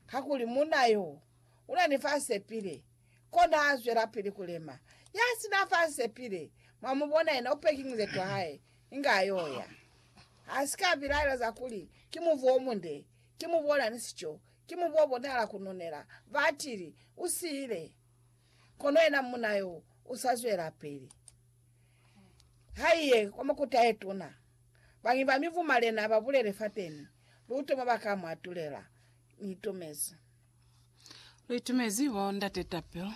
Kakuli munna yo u na ni fa sepile, kona a zwelapili ku lema. Ya si na fa sepile, mwa mu bona yena, u peki muzetu wa hae, inge a y'o ya. A si ka bilaela za kuli, Ki mubu o munde, ki mubu o na ni sico, ki mubu o bonahala ku nunela, ba tili, u siile. Kono yena munna yo u sa zwelapili. Haiye kwa makuta ye tuna. Bañwi ba mi bumalena ba bulele fateni, luto mwa ba ka mu atulela. Ni itumezi. Lu itumezi bo Ndate Tapel.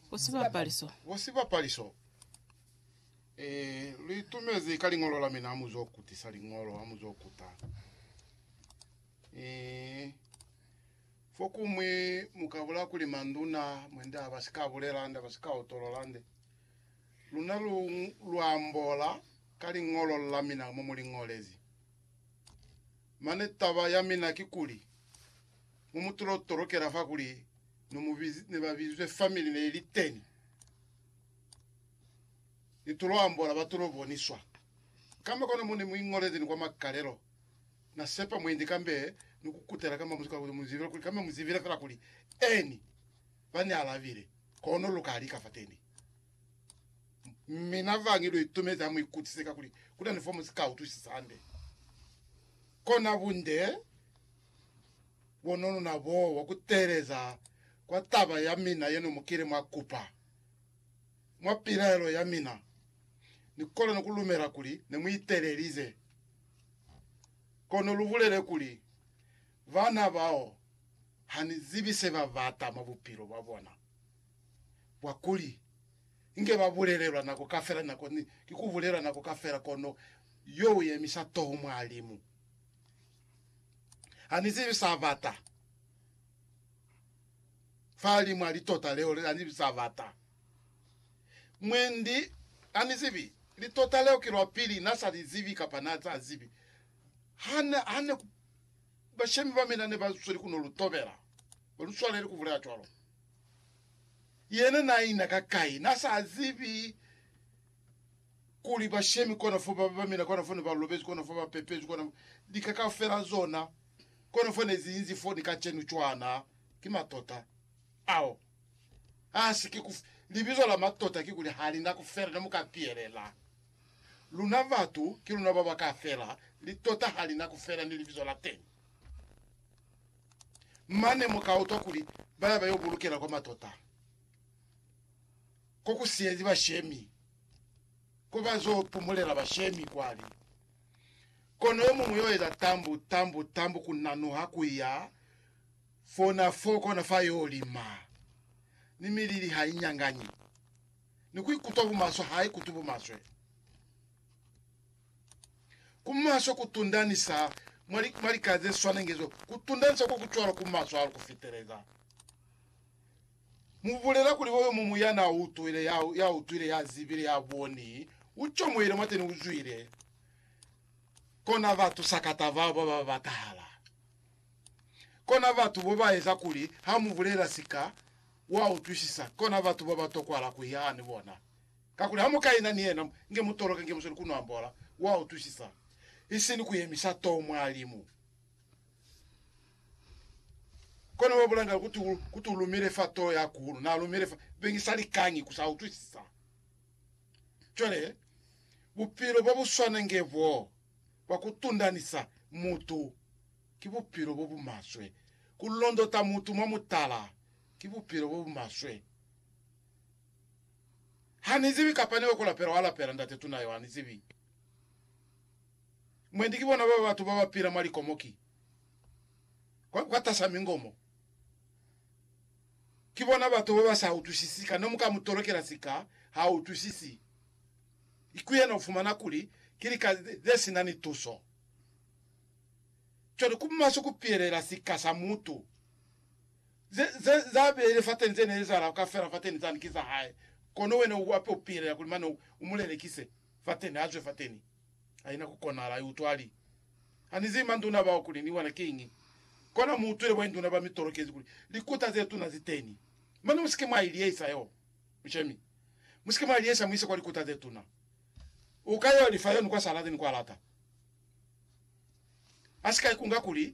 Bo Sibapaliso. Bo Sibapaliso. Eh, lu itumezi ka liñolo la mina amu zo kutisa liñolo, amu zo kuta. Eh, Fokumwi mu ka bula kuli manduna mwende a ba si ka bulela nde, ba si ka utolola nde. Luna lu, lu ambola ka liñolo la mina mo mu li ñolezi. Mane taba ya mina ki kuli, mo mu tulo tolokela fa kuli no mu biz, ne ba bizwe family ne ili teni, ni tulo ambola ba tulo boniswa kamba kono mo ne mu iñolezi ni kwa makalelo. Na sepa mwendi kambe ni ku kutela kamba muzibi kuli mu zibile kuli kambe mu zibile fela kuli Eni. Ba ni alabile, Kono lu ka lika fateni. Mina vangi lu itumezi ha mu ikutise ka kuli ku na ni fo mu si ka utwisisa hande. Kona bunde bo no lu na boo bwa ku teeleza kwa taba ya mina ye no mu kile mwa kupa. Mwa pilaelo ya mina, ni kolwa ni ku lumela kuli ne mu itelelize. Kono lubulele kuli, Bana bao hanizibi sebabata mwa bupilo bwabona bwakuli inge babulelelwa nako kafela nako ni ki kubulelwa nako kafela kono yo uyemisa toho mwa limu. Hanizibi sabata fa limu ali tota leo leli hanizibi sabata. Mwendi na ni zibi. Litota leo ki lwa pili na sa li zibi kapa na sa zibi. Ha ne, ha ne ku, bashemi ba mina ne ba sweli ku no lu tobela. Ba lu swaleli ku bulela cwalo. Yena na ina ka kai? Na sa zibi kuli bashemi kona fo ba, ba mina kona fo ne ba lobezi, kona fo ba pepezi, kona lika kaufela zona, kona fo ne zi inzi fo ni kacenu cwana. Ki matota ao. Hasi ki ku libizo la matota kikuli halina kufela ne muka piyelela. Luna batu ki luna baba ka fela, litota halina kufela ni libizo la teni. Mane muka utwa kuli baya bayo bulukela kwa matota ko ku siyezi bashemi, ko ba zo pumulela bashemi kwali. Kono yo muñwi yo eza tambu, tambu, tambu ku nanuha kuya. Fona fo kona fa yo lima, ni milili ha i nyanganyi, ni ku ikutwa bumaswe ha i kutwi bumaswe. Ku maswe ku tundanisa mwa, mwa lika ze swanenge zo, ku tundanisa ko ku cwalo ku maswe hahulu ku fiteleza. Mu bulela kuli uyo mumu ya na utwile, ya, ya utwile, ya zibile, ya boni, u comohile mwateni, u zwile kona batu sakata bao ba ba batahala. Kona batu bo ba eza kuli ha mu bulela sika wa utwisisa, kona batu bo ba tokwala ku ya ni bona. Kakuli ha mu ka ina ni yena, nge mu toloke, nge mu sweli ku nu ambola, wa utwisisa, isini ku yemisa too mwa limu. Kona wa bulanga kuti, kuti u lumile fa too ya kuhulu, na lumile fa, bengi sa likañi ku sa utwisisa. Cwale, bupilo bo bu swana nge boo, bwa ku tundanisa mutu Ki bupilo bo bu maswe. Ku londota mutu mwa mutala ki bupilo bo bu maswe. Ha ni zibi kapa ni yo ku lapela wa lapela ndate tuna yo ha ni zibi. Mwendi ki bona ba batu ba ba pila mwa likomo ki kwa, kwa tasa mingomo. Ki bona batu ba ba sa utwisisi ka. Ne mu ka mu tolokela sika, ha utwisisi. I ku yena u fumana kuli ki lika ze si na ni tuso. cwale ku maswe ku pihelela sika sa mutu. Ze, ze, za beile fateni ze ne ezahala kaufela fateni zani ki za hae, kono wena u ape u pihelela kuli mane u, u mu lelekise fateni, azwe fateni. Haina ku konahala, i utwa, ali, Ha ni zibi manduna bao kuli ni bona kiñi. Kona mu utwile boinduna ba mi tolokezi kuli likuta ze tuna zi teni. Mane musike mwa i liyehisa yo, mushemi. Musike mwa i liyehisa mu ise kwa likuta ze tuna. Uka yo lifa yono kwa sa lata ni kwa lata. Asika ikunga kuli